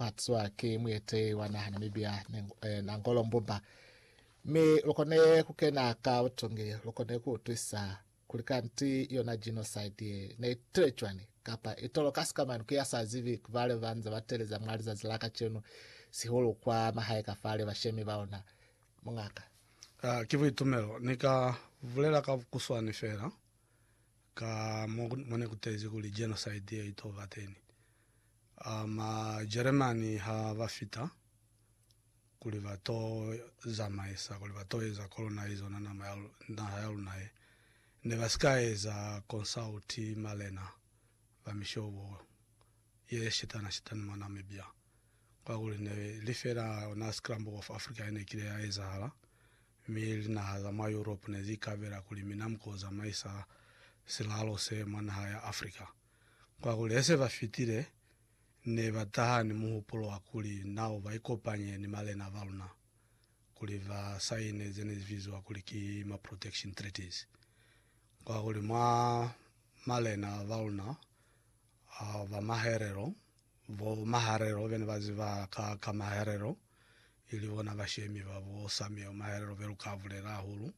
Batswa ki muete wa naha Namibia na Ngolo Mbumba, mi lukone kukena ka butongi, lukone kuutwisa kuli kanti yona genocide ye ne itile cwani, kapa itolo kasi kamanu ki ya sa zibi kubale banze bateleza mwa lizazi la kacenu, sihulu kwa mahae kafale bashemi baona. Mungaka. Uh, ki buitumelo. Ni ka bulela ka bukuswani fela ka mo, mo ne kutezi kuli genocide ye ito bateni. A Majeremani ha ba fita kuli ba to zamaisa kuli ba to eza colonize ona nama ya naha ya luna ye, ne ba si ka eza consult malena ba mishobo ye shetana shetani mwa Namibia. Kwakuli ne li fela ona scramble of Africa ye ne kile ya ezahala, mi linaha za mwa Europe ne zi ikabela kuli mina mu ko zamaisa silalo se mwa naha ya Africa. Kwakuli hesebafitile, nebataha ni muhupulo wa kuli nao baikopanye ni malena baluna kuli ba saine zenezibiziwa kuli ki ma Protection Treaties. Kwakuli mwa malena baluna ba maherelo, bo Maharero bene baziba ka ka Maharero, ili bona bashemi ba bo Samuel Maharero beluka bulela hahulu.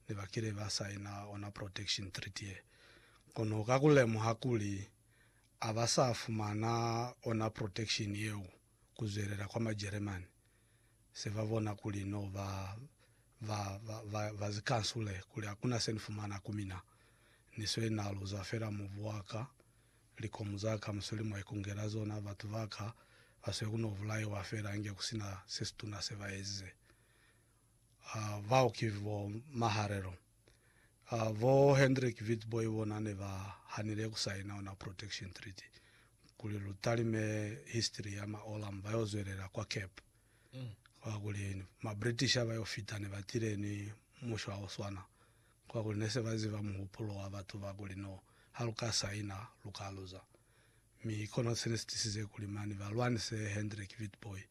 ne ba kile ba saina ona protection treaty ye. Kono ka ku lemuha kuli a ba sa fumana ona protection yeo ku zwelela kwa Majeremani, se ba bona kuli n'o ba ba ba ba zi kansule kuli hakuna se ni fumana ku mina. Ni swe na luza fela mubu wa ka, likomu za ka mu sweli mwa ikungela zona, batu ba ka ba swe ku n'o bulaiwa fela inge ku si na se situna se ba ezize. bao ki bo Maharelo, bo Hendrik Witbooi bona ne ba hanile ku saina ona Protection Treaty kuli lu talime history ya ma Olam ba yo zwelela kwa Cape. Kwa kuli ma British ha ba yo fita ne ba tile ni mushwa o swana, kwa kuli ne se ba ziba muhupulo wa batu ba kuli no ha lu ka saina lu ka luza. mi kono sene sitisize kuli mani balwanise Hendrik Witbooi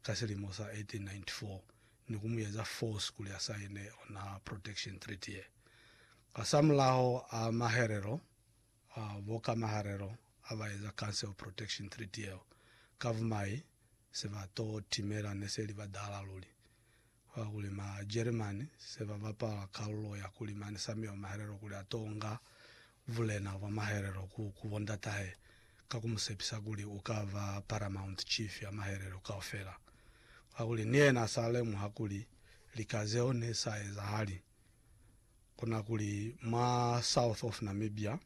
ka silimo sa 1894 ni kumueza force kuli asaine ona Protection Treaty ye. Hasamulaho a maherelo a bokamaharelo abaeza Council Protection Treaty yeo, ka bumai sebato timela neseli badala luli. Ba kuli ma German se ba bapala kalulo ya kuli mani Sami wa Mahelelo kuli a to nga bulena bwa mahelelo ku, ku bo ndatahe, ka ku mu sepisa kuli u ka ba paramount chief ya mahelelo kaufela. Kakuli ni yena a sa lemuha kuli lika zeo ne sa ezahali. Ku na kuli mwa south of Namibia,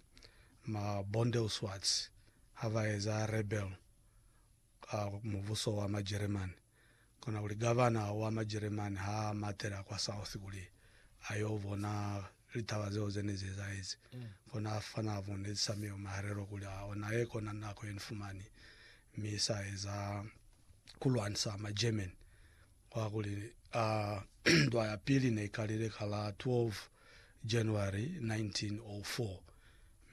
ma Bondeusuarts ha ba eza rebel, ka mubuso wa Majeremani, kona kuli gavana wa Majeremani ha a matela kwa South kuli a yo bona litaba zeo ze ne zi ezahezi, kona a fana bo Ned Samuel mahelelo kuli a ona ye kona nako ye ni fumani mi sa eza ku lwanisa Magerman. Kwa kuli a ndwa ya pili ne i kalile ka la 12 January 1904,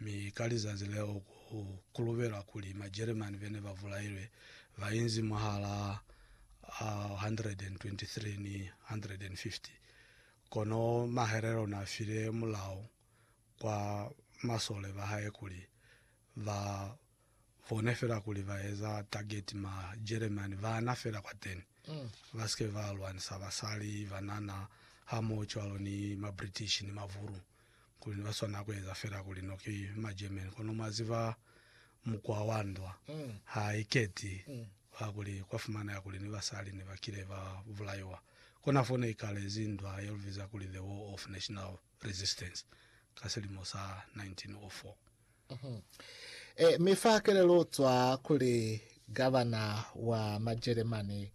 Mi ka lizazi leo ku kulubela kuli Majeremani bene ba bulailwe ba inzi mwahalaa 123 ni 150. Kono Maherero na file mulao kwa masole ba hae kuli ba Bona fela kuli ba eza target ma Jeremane bana fela kwateni, ba si ke ba lwanisa basali, banana, hamohocwalo ni ma British ni mavulu, kuli ne ba swanela ku eza fela kuli no ki ma German. Kono mwa ziba, mukwa wa ndwa ha i keti, kwa kuli kwa fumaneha kuli ni basali ne ba kile ba bulaiwa. Kona fo ne i kalezi ndwa ye lu biza kuli The War of National. Resistance ka silimo sa 1904. E mi fa kelelozwa kuli gavana wa Majelemani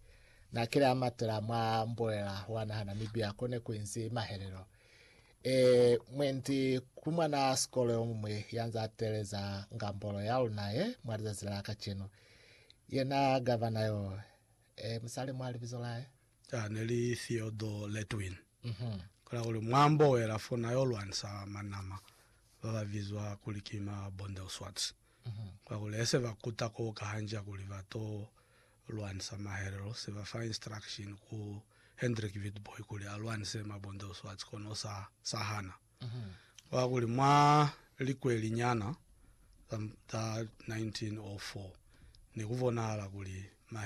na kile a matela mwa mbulela wa naha Namibia ko ne ku inzi mahelelo. E mwendi ku mwana sikolo yo muñwi ya nza teeleza ngambolo ya luna ye mwa lizazi la kacenu, yena gavana yo, e mi sa lemwa libizo la hae. Caa ne li Theodore Letwin. Kola kuli mwambo we la fona yo lwanisa manama ba ba bizwa kuli ki ma Bondelswarts. Kola kuli ese ba kuta ko ka hanja kuli ba to lwanisa mahelelo, se ba fa instruction ku Hendrik Witbooi kuli a lwanise ma Bondelswarts kono sa sa hana. Kola kuli mwa likweli nyana za 1904 ne ku bonahala kuli mahelelo